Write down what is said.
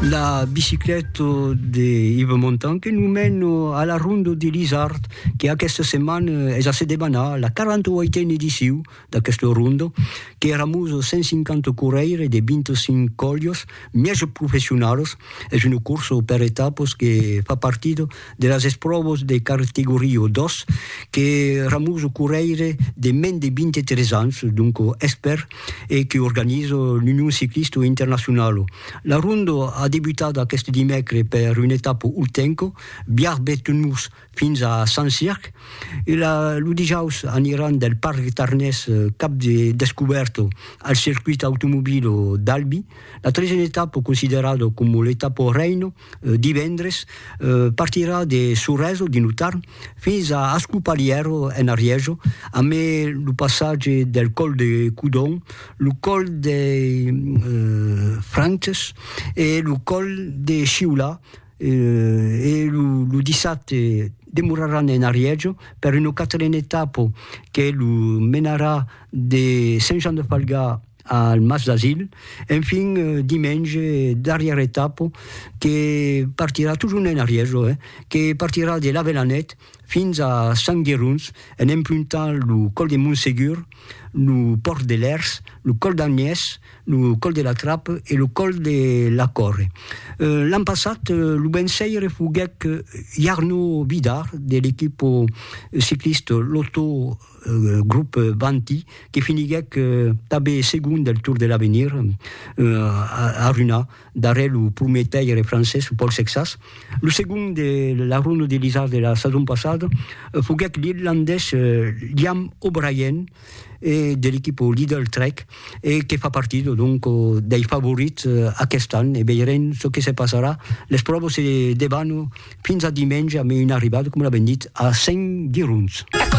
la bicicleta de Yves Montan que nous mène à la ronde de l'Isard, que aquesta setmana es a se debanar la 48a ediciu d'aquesta ronda, que éramos 150 correire de 25 colhos mièges professionals. Es una corsa per etapas que fa partida de las espròvas de cartegoria 2 que Ramuso correire de mens de 23 ans, donc espèr, e que organiza l'Union Ciclista Internacionala. La ronda a debutat aqueste dimècre per una etapa urtenca, Biarb-Betmurs fins a Saint-Cirq, e lo dijaus aniran del Parc Tarnés cap de descubèrta al circuit automobila d'Albi, la tresena etapa considerada coma l'etapa reina. divendres, partirà de Sorèso, dins lo Tarn, fins a Ascopalièro, en Arièjo, a mai lo passatge del còl de Codon, lo còl dei Frances e lo còl de Sciolà, e lo dissabte demoraràn en Arièjo per una quatrena etapa que lo menarà de Sent Jan de Falgà al Mas d'Asil, enfin dimenge darrièra etapa que partirà totjorn en arrièr jo eh, que partirà de l'Avelanèt fins a Sant Gerons en empruntant lo còl de Montsegur, lo pòrt de Lèrs, lo còl d'Agnès, lo còl de la Trape e lo còl de la Còrre. L'an passat lo vençaire foguèc Jarno Vidar de l'equipa ciclista Lotto Groupe Vanti, que finiguèc tanben segon del Tour de l'Avenir a Runha, darrèr lo prumèr taire francés Paul Sexas. Lo segon de la Ronda de l'Isard de la sason passada foguèc l'irlandés Liam O'Brien de l'equipa Lidl Trek e que fa partida donc dei favorits aquest an e veirem çò que se passarà. Les pròvas se debanam fins a dimenge amb una arribada, coma l'avèm dit, a 5 girons.